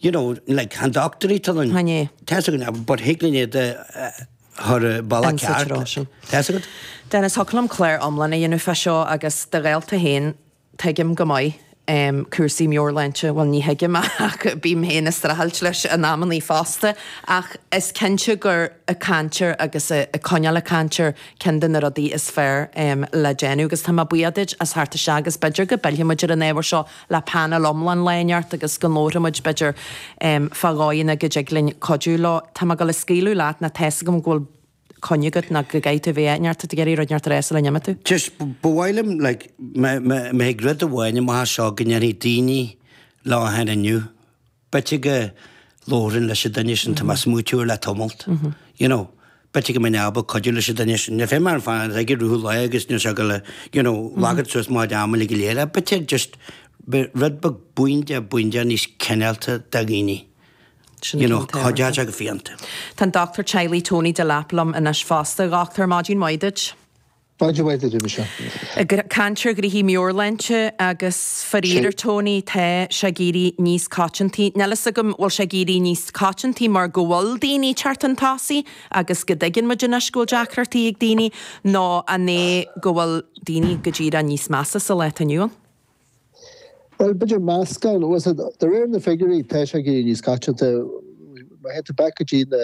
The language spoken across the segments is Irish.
You know, like chan dochtúirí them. Chan é. Tá's agat na, but thig linn iad a chur i bhfeidhm go ceart. An saothar sin. Tá's agat? Dennis, thiocfadh liom clár iomlán a dhéanamh fá seo agus de ghaolta féin, tuigim go maith, em, cúrsaí meabhairshláinte, bhuel ní thuigim ach bím féin ag streachailt leis in amannaí fosta, ach is cinnte gur ag caint air agus ag ag coinneáil ag caint air ceann de na rudaí is fearr, em, le déanamh agus tá mé buíoch duit as theacht isteach agus b'fhéidir go bpillfidh muid ar an ábhar seo le painéal iomlán lá inteacht agus go labharfaidh muid, b'fhéidir, fá dhóigheanna go dtig linn cuidiú leo. Tá mé ag gabháil a scaoileadh leat, ná tá's agam go bhfuil coinne agat nó go gcaithfidh tú a bheith áit inteacht, tú ag iarraidh rud inteacht a rá sula n-imíonn tú. Just, ba mhaith liom, like, má má thig rud amháin amach as seo go ndéanfaidh daoine lá ann inniu. B'fhéidir ag labhairt leis an duine sin tá mé ag smaoitiú air le tamalt. You know. B'fhéidir go mbeinn ábalta cuidiú leis an duine sin. nó féith marathon fada a rith leo agus níl sé ag gabháil you know like suas Mount Everest go léir ach b'fhéidir just b'fhéidir rud beag bímis bímis níos cinéalta do dhaoine you know cairdeas agus fiánta. Tá an Dochtúir Teaghlaigh Tony Delap liom anois fosta. Dhochtúir, maidin mhaith duit. Maidin mhaith duit. Ag caint ar ghnoithí meabhairshláinte agus faraor géar Tony, tá sé ag éirí níos coitianta, níl a fhios agam bhfuil sé ag éirí níos coitianta mar go bhfuil daoine teacht chun tosaigh agus go dtuigeann muid anois go bhfuil deacrachtaí ag daoine, nó an é go bhfuil daoine go díreach níos measa sa lá atá inniu ann? Bhuel, b'fhéidir meascán acu. De réir na figiúirí tá sé ag éirí níos coitianta. Má théann tú back go dtí na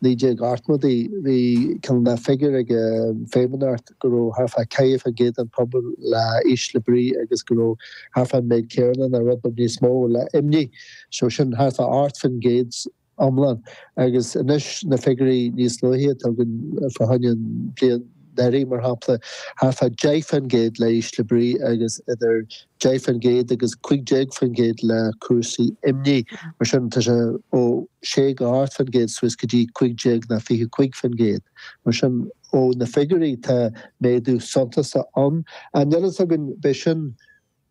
naoi déag ochtmhódaí bhí cineál na figiúir ag an Feidhmeannacht go raibh thart fá cúig fán gcéad den phobal le ísle brí agus go raibh thart fán méid céarna ná rud beag níos mó le imní. So sin thart fá ocht fán gcéad. iomlán agus anois na figiúirí níos luaithe a tugann fá choinne an bhliain dheiridh, mar shampla, thart fá 10% le ísle brí agus idir 10% agus 15% le cúrsaí imní. Mar sin, tá sé ó 6 go 8% suas go dtí 15 ná 25%. Mar sin, ó na figiúirí tá méadú suntasach ann. An dtugann b'fhéidir sin.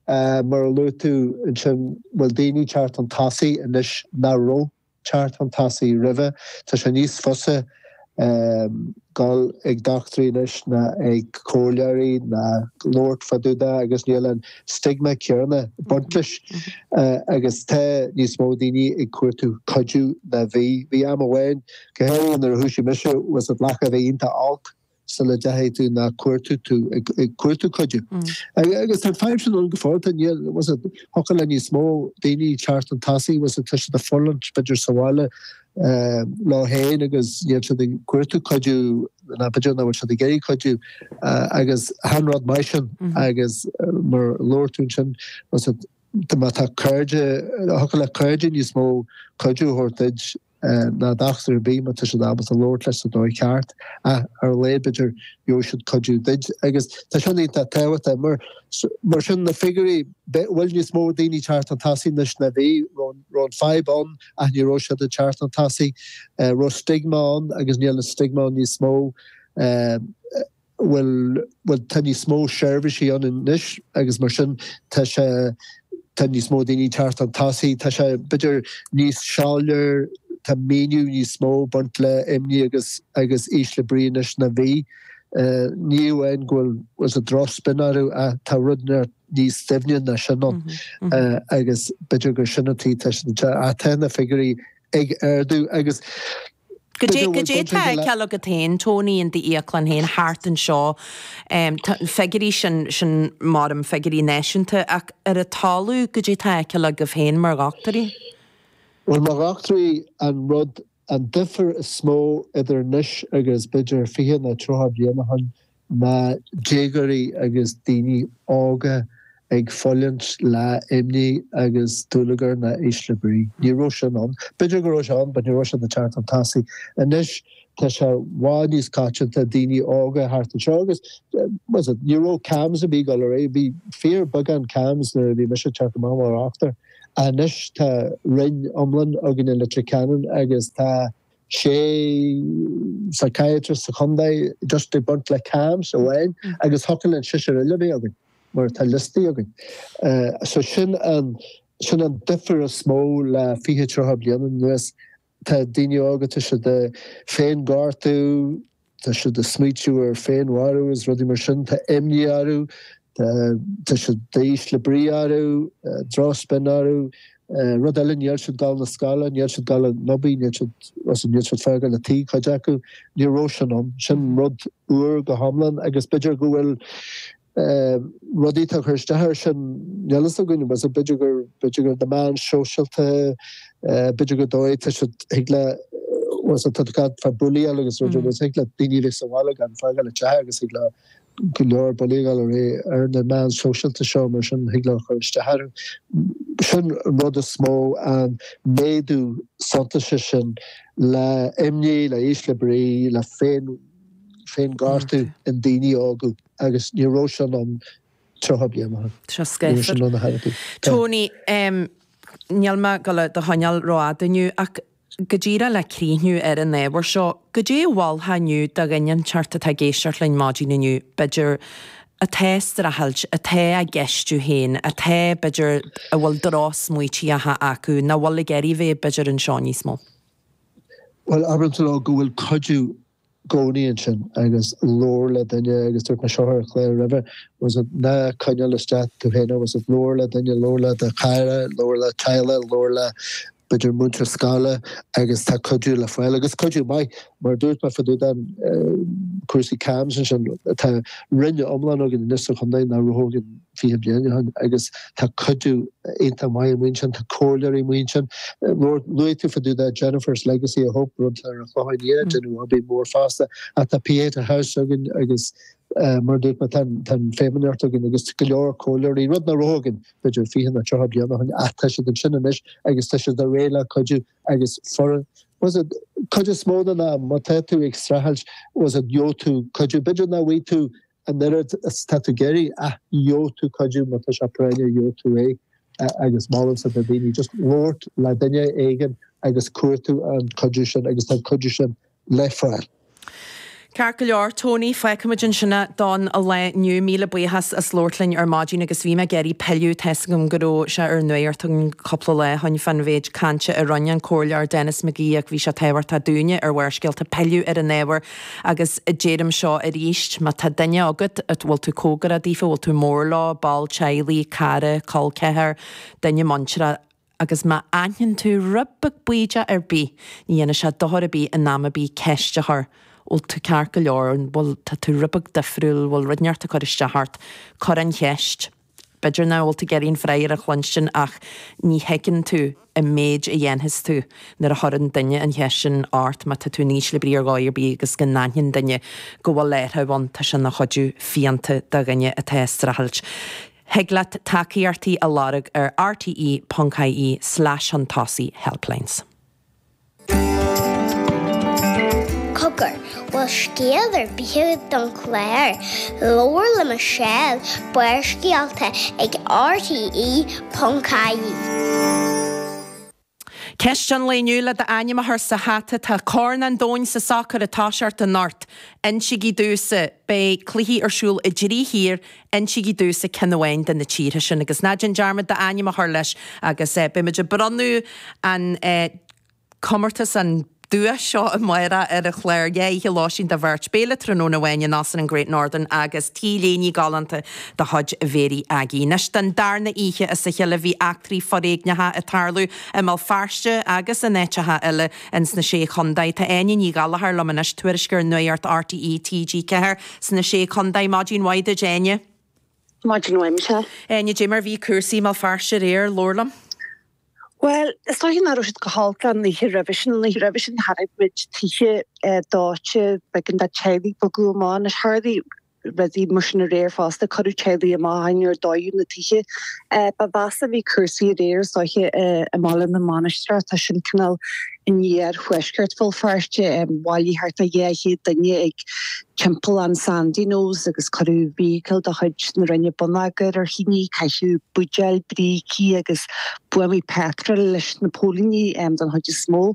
Mar a luaigh tú ansin bhfuil daoine teacht chun tosaigh anois nach raibh teacht chun tosaigh roimhe. Tá sé níos fusa dul ag dochtúirí anois ná ag comhairleoirí ná labhairt fá dúda agus níl an stigma céarna baint leis agus tá níos mó daoine ag cuartú cuidiú ná bhí. Bhí am amháin, go háirithe nuair a thoisigh mise, b'fhéidir go gcaithfeá a bheith iontach olc. sula dtéann tú ná cuartaíonn tú ag cuartú cuidiú. Agus tá feidhm sin ann go fóill, thiocfadh le níos mó daoine teacht chun tosaigh, tá siad a' fulaingt b'fhéidir sa bhaile leo féin agus níl siad ag cuartú cuidiú nó b'fhéidir nach bhfuil siad ag iarraidh cuidiú agus achan rud mar sin agus mar a labhair tú ansin má tá cairde, thiocfadh le cairde níos mó cuidiú a thabhairt duit. ná dochtúir ar bith má tá siad ábalta labhairt leis sa dóigh cheart ach ar a laghad b'fhéidir gheobhaidh siad cuidiú duit agus tá sin iontach tábhachtach mar mar sin na figiúirí bhfuil níos mó daoine ag teacht chun tosaigh anois ná bhí an raibh an fadhb ann ach ní raibh siad ag teacht chun tosaigh an raibh stiogma ann agus níl an stiogma ann níos mó a bhfuil bhuel tá níos mó seirbhísí ann anois agus mar sin tá sé tá níos mó daoine ag teacht chun tosaigh tá sé b'fhéidir níos soiléire tá míniú níos mó ag baint le imní agus agus ísle brí anois ná bhí ní amháin go bhfuil you know droch-spion orthu tá rud i bhfad níos doimhne ná sin nó agus b'fhéidir gur sin an tuige tá sin te a tá na figiúirí ag ardú agus Goidé, goidé, atá le feiceáil agat féin, Tony, i d'íoclann féin thart anseo, na figiúirí sin, sin mar a deirim, figiúirí náisiúnta, ach ar an talamh, goidé atá le feiceáil agaibh féin mar dhochtúirí? Bhuel, mar dhochtúirí, an rud, an difear is mó idir anois agus b'fhéidir fiche nó tríocha bliain ó shin, Ná déagóirí agus daoine óga ag fulaingt le imní agus dúlagar nó ísle brí. Ní raibh sin ann. B'fhéidir go raibh sé ann but ní raibh sé ag teacht chun tosaigh. Anois tá sé i bhfad níos coitianta i ndaoine óga thart anseo agus you know ní raibh CAMHS ar bith go leor bhí fíorbheagán CAMHS nuair a bhí mise ag teacht amach mar dhochtúir. Anois tá roinn iomlán againn i Leitir Ceanainn agus tá. sé psychiatrist sa chontae just ag baint le CAMHS amháin agus thiocfadh linn seisear eile a bheith againn mar atá liostaí againn. So sin an sin an difear is mó le fiche tríocha bliana anuas. Tá daoine óga toiseacht ag féinghortú, Tá siad ag smaoitiú ar féin-mharú is rudaí mar sin. Tá imní orthu. Tá siad ísle brí orthu. Droch-spion orthu. Rud eile, níl siad ag dul na scoile. Níl siad ag dul ag obair. Níl siad, bhuel, so níl siad ag fágáil an tí, cuid acu. Ní raibh sin ann. Sin rud úr go hiomlán agus b'fhéidir go bhfuil, rudaí atá ag cur isteach air sin, níl a fhios againn. B'fhéidir gur na meáin shóisialta, b'fhéidir gur dóigh, tá siad, thig le, bhuel, tá a fhios agat fá bullaíl agus rud ar bith, thig le daoine a bheith sa bhaile gan fágáil a dteach agus thig leo go leor bullaíocht a ghabháil ar aghaidh ar na meáin shóisialta seo mar sin thig leo cur isteach ar an, sin an rud is mó, an méadú suntaise sin le imní, le ísle brí, le féin, féinghortú i ndaoine óga. agus ní raibh sin ann 30 bliain ó shin. Seo scáfar. Tony, níl mé ag dul do choinneáil ró-fhada inniu ach go díreach le críochnú ar an ábhar seo, goidé a mholfá inniu do dhaoine inteacht atá ag éisteacht linn maidin inniu, b'fhéidir, atá ag streachailt, atá á gceistiú féin, atá, b'fhéidir, a bhfuil drochsmaoitíocha acu, nach bhfuil ag iarraidh a bheith, b'fhéidir, anseo níos mó? Bhuel, abraim leo go bhfuil cuidiú gcónaí ansin agus labhair le duine agus dúirt mé seo ar an chlár roimhe bhfuil a fhios agat ná coinneáil isteach tú féin bhfuil a fhios agat labhair le duine labhair le do chara labhair le teaghlach labhair le b'fhéidir múinteoir scoile agus tá cuidiú le fáil agus cuidiú maith mar a dúirt mé fá dtaobh den cúrsaí CAMHS ansin tá roinn iomlán againn anois sa chontae nach raibh againn 20 bliain ó shin agus tá cuidiú iontach maith amuigh ansin, tá comhairleoirí amuigh ansin. Luaigh tú fá dtaobh de Jennifer's Legacy of Hope rud ar an Chlochán Liath déanamh obair mhór fosta ach tá Pieta House againn agus mar a dúirt mé tá an Feidhmeannacht againn agus go leor comhairleoirí, rud nach raibh againn b'fhéidir 20 nó 30 bliain ó shin ach tá siad ansin anois agus tá siad réidh le cuidiú agus bhfuil a fhios agat cuid is mó den am má tá tú ag streachailt bhfuil a fhios agat gheobhaidh tú cuidiú b'fhéidir nach bhfaighidh tú An oiread is atá tú ag iarraidh, ach gheobhaidh tú cuidiú, má tá sé práinneach, gheobhaidh tú é agus molaimse do dhaoine just labhairt le duine éigin agus cuartú an cuidiú sin agus tá an cuidiú sin le fáil. Ceart go leor, Tony, fágfaimid ansin é don lá inniu, míle buíochas as labhairt linn ar maidin agus bhí mé ag iarraidh pilleadh tá 'fhios agam go raibh sé ar an nuaíocht againn cúpla lá ó shin fán mhéid cainte a rinne an comhairleoir Denis McGee ach bhí sé tábhachtach dúinne ar Bharrscéalta pilleadh ar an ábhar Agus deirim seo arís, má tá duine agat a bhfuil tú cóngarach daofa, a bhfuil tú mór leo, ball teaghlaigh, cara, col ceathair, duine muintire, agus má aithnionn tú rud beag bídeach ar bith, ní dhéanfaidh sé dochar ar bith in am ar bith ceist a chur, bhfuil tú ceart go leor, an bhfuil, tá tú rud beag difriúil, bhfuil rud inteacht ag cur isteach ort, cuir an cheist. B'fhéidir nach bhfuil tú ag iarraidh an freagra a chluinstin ach ní thuigeann tú an méid a dhéanfas tú nuair a chuireann duine an cheist sin ort, má tá tú in ísle brí ar dhóigh ar bith agus go n-aithníonn duine go bhfuil athrach ann, tá sin ina chuidiú fiánta do dhuine atá ag streachailt. Thig leat tacaíochtaí a lorg ar rte.ie slash chun tosaigh, helplines. Cogar, bhfuil scéal ar bith don chlár? Labhair le Michelle, Barrscéalta ag RTÉ.ie. Ceist an lae inniu le d'ainm a chur sa hata, tá Corn an Domhain sa sacar ag tosacht anocht. Insígí domhsa. Beidh cluichí ar siúl i dtrí thír Insígí domhsa ceann amháin de na tíortha sin agus ná déan dearmad d'ainm a chur leis agus beidh muid ag bronnadh an comórtas, an duais seo amárach ar an chláir dhá oíche lóistín do bheirt, béile tráthnóna amháin in Óstán an Great Northern agus T-léiní galánta de chuid Mháire Aggie. Anois don darna oíche as a cheile bhí eachtraí foréigneacha ag tarlú i mBéal Feirste agus in áiteacha eile ins na Sé Chontae. Tá Áine Ní Ghallchóir liom anois, tuairisceoir Nuacht RTÉ, TG4. Sna Sé Chontae, Maidin mhaith duit Áine. Maidin mhaith Michelle. Áine, caidé mar bhí cúrsaí i mBéal Feirste aréir, labhair liom. Bhuel, is dóiche nach raibh siad chomh holc leis an oíche roimhe sin, an oíche roimhe sin chonaic muid tithe dóite, b'éigean do teaghlaigh bogadh amach anois, tharla rudaí mar sin aréir fosta, cuireadh teaghlaigh amach ach níor dódh na tithe. Ba mheasa a bhí cúrsaí aréir is dóiche i mBaile na Mainistreach, tá sin cineál In iarthuaisceart Bhéal Feirste, bhailigh thart ar dhá chéad duine ag timpeallán Sandyknowes agus cuireadh feithicil de chuid na Roinne bonneagair ar thine. Caitheadh buidéil, brící agus buamaí peatrail leis na póilíní den chuid is mó.